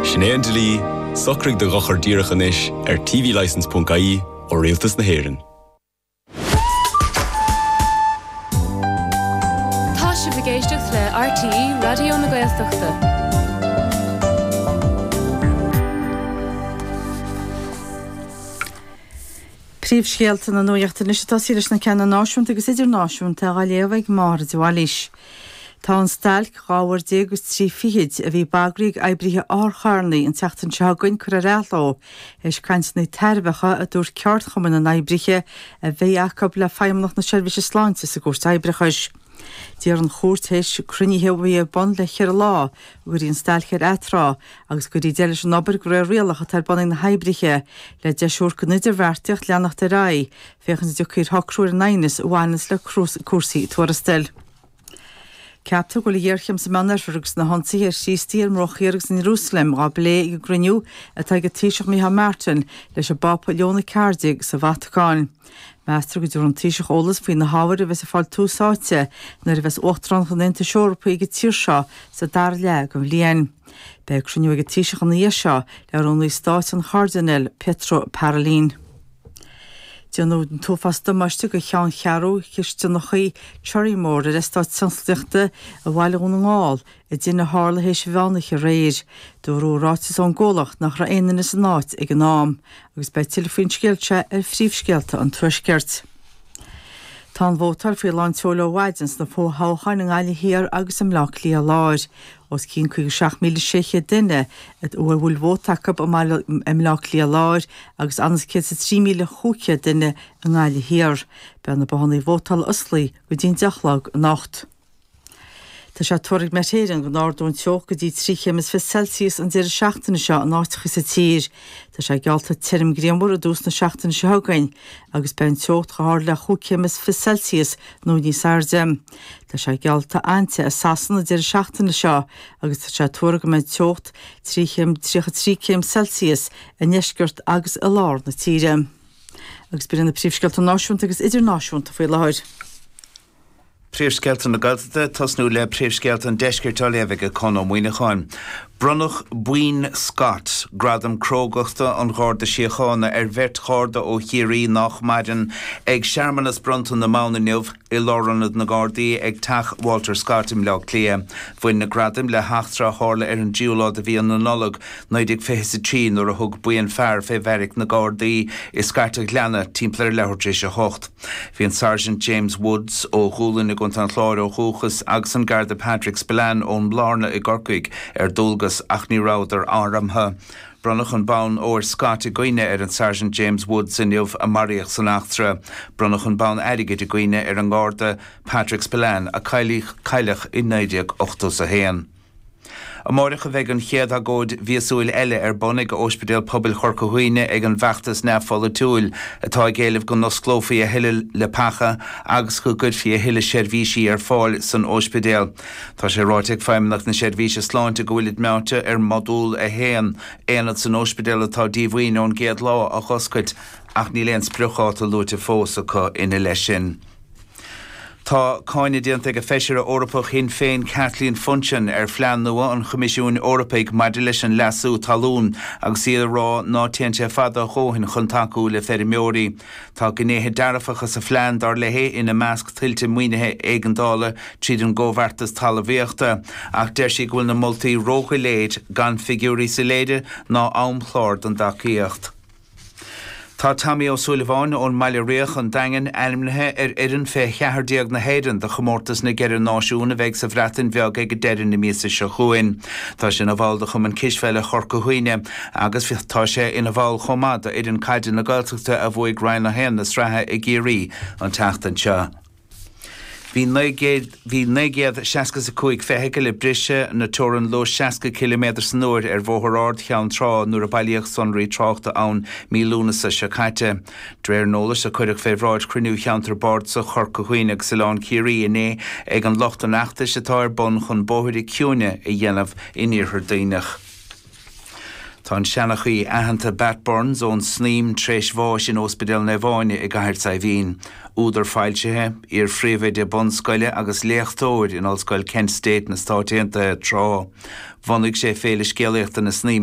Sin é an dlí, socraigh do dhochar díreach anois ar tvlicense.ie ó Rialtas na hÉireann. Tá sibh ag éisteacht le RTÉ Raidió na Gaeltachta. Príomhscéalta na Nuacht anois ag tosaí leis na ceanna náisiúnta agus idirnáisiúnta dhá léamh ag Máire de Bhailís. Tá an stailc dhá uair déag is trí fichid a bhí bagraithe ag oibrithe otharcharrannaí an tseachtain seo chugainn curtha ar athló, éis cainteanna tairbheacha, a dúirt ceardchumann na n-oibrithe, a bhí acu le Feidhmeannacht na Seirbhíse Sláinte sa gCúirt Oibreachais. D'iarr an Chúirt, théis cruinnithe a bhí ar bun le ceithre lá, go gcuirfí an stailc ar atráth agus go gcuirfí deireadh leis an obair de réir rialach atá ar bun ag na hoibrithe, le deis a thabhairt don idirbheartaíocht leanacht ar aghaidh. féachaint an dtiocfaí ar shocrú ar an aighneas a bhaineanns le cúrsaí tuarastail. Ceaptar go bhfuil an ghéarchéim sa Mheán Oirthear agus na hionsaithe ar Chríostaithe ar an mBruach Thiar agus in Iarúsailéim dhá bplé ag an gcruinniú atá ag an Taoiseach Micheál Martin leis an bPápa Leo a Ceathair Déag sa Vatacáin. Meastar go dtabharfaidh an Taoiseach eolas faoi na hábhair a bheas ag fáil tús áite nuair a bheas Uachtaránacht an Aontais Eorpaigh ag an tír seo sa dara leath den bhliain. Beidh cruinniú ag an Taoiseach ina dhiaidh seo le Rúnaí Stáit, an Cairdinéal Pietro Parolin. Déanadh an t-uafás damáiste do cheanncheathrú chistineacha Cherrymore ar eastát tionsclaíochta i mbaile Dhún na nGall, i dtine a tharla théis mheánoíche aréir. Dúradh i ráiteas ón gcomhlacht nach raibh aon duine san áit ag an am agus beidh tuilleadh faoin scéal seo ar phríomhscéalta an Tuaiscirt. Tá an vótáil faoi lán seoil ó mhaidin sna fo-thoghcháin i nGaillimh Thiar agus i mBleá Cliath Láir. Os cionn 57,600 duine a bhfuil bhfuil vóta acu i mBaile i mBleá Cliath Láir agus anuas is 103,500 duine i nGaillimh Thiar. Beidh na bothannaí vótála osclaí go dtí'n deich a chlog anocht. Tá sé tuar ag Met Éireann go n-ardóidh an teocht go dtí trí chéim is fiche Celsius an deireadh seachtaine seo in áiteacha sa tír. Tá sé geallta tirim grianmhar i dtús na seachtaine seo chugainn agus beidh an teocht chomh hard le chúig chéim is fiche Celsius nó níos airde. Tá sé geallta an-te i Sasana an deireadh seachtaine seo agus tá sé tuartha go mbeidh teocht trí chéim, 33 céim Celsius, i ndeisceart agus i lár na tíre. Agus b'in iad na príomhscéalta náisiúnta agus idirnáisiúnta faoi láthair. Príomhscéalta na Gaeltachta, tosnú le príomhscéalta an deiscirt á léamh ag Conn Ó Muíneacháin. Bronnadh Bonn Scott, gradam crógachta an Gharda Síochána, ar bheirt Gharda ó Chiarraí nach maireann ag searmanas bronnta na mbonn inniu. I Lárionad na nGardaí ag Teach Walter Scott i mBleá Cliath, bhain na gradaim le heachtra a tharla ar an dtríú lá de mhí na Nollag, 1923, nuair a thug buíon fear fé bheairic na nGardaí i Scairt an Ghleanna, timpeall ar a leathuair tar éis a hocht. Bhí an Sergeant James Woods, ó Dhúlainn i gContae an Chláir ó dhúchas, agus an Garda Patrick Spillane, ón mBlárna i gCorcaigh, ar dualgas, ach ní rabhadar armtha. Bronnadh an bonn óir Scott i gcuimhne ar an Sergeant James Woods inniu a maraíodh san eachtra. Bronnadh an bonn airgid i gcuimhne ar an nGarda Patrick Spillane a cailleadh i 1981. Amáireach a bheidh an chéad agóid mhíosúil eile ar bun ag Óispidéal Pobail Chorca Dhuibhne ag an bhfeachtas neamh-pholaitiúil atá ag éileamh go n-osclófaí a thuilleadh leapacha agus go gcuirfí a thuilleadh seirbhísí ar fáil san óispidéal. Tá sé ráite ag Feidhmeannacht na Seirbhíse Sláinte go bhfuilid meáite ar Mhodúl 1, aonad san óispidéal atá díomhaoin ón gcéad lá, a dh'oscailt ach níl aon spriocdháta luaite fós acu ina leith sin. Tá cáineadh déanta ag Feisire Eorpach Shinn Féin Kathleen Funchion ar phlean nua an Choimisiúin Eorpaigh maidir leis an leasú talún agus í ag rá ná téann sé fada a dhóthain chun tacú le feirmeoirí. Tá gnéithe dearfacha sa phlean, dar léi, ina measc tuilte maoinithe éigeandála tríd an gComhbheartas Talmhaíochta, ach deir sí go bhfuil na moltaí ródhoiléir, gan figiúirí soiléire ná amchlár don dtacaíocht. Tá Tommy Ó Súilleabháin ón mBaile Riach, an Daingean, ainmnithe ar fhoireann fé 14 na hÉireann do Chomórtas na gCeithre Náisiún a bheidh sa Bhreatain Bheag ag deireadh na míosa seo chugainn. Tá sé ina bhall de Chumann Cispheile Chorca Dhuibhne. agus tá sé ina bhall chomh maith d'fhoireann caide na Gaeltachta a bhuaigh Roinn 1 na sraithe i gCiarraí an tseachtain seo. Bhí 965 feithicil ag briseadh na teorann luais 60 ciliméadar san uair ar Bhóthar Ard Cheann Trá nuair a bailíodh sonraí tráchta ann mí Lúnasa seo caite, de réir an eolais a cuireadh fé bhráid Chruinniú Cheantar Bardasach Chorca Dhuibhne agus Oileán Ciarraí inné ag an lucht an fheachtais atá ar bun chun bóithre ciúine a dhéanamh in Iarthar Duibhneach. Tá an seanchaí aitheanta Batt Burns ón Snaidhm tréis bháis in Óspidéal Naomh Áine i gCathair Saidhbhín. Údar foilsithe, iar-phríomhoide bunscoile agus léachtóir in Ollscoil Kent State sna Stáit Aontaithe tráth. Bhunaigh sé Féile Scéalaíochta na Snaidhme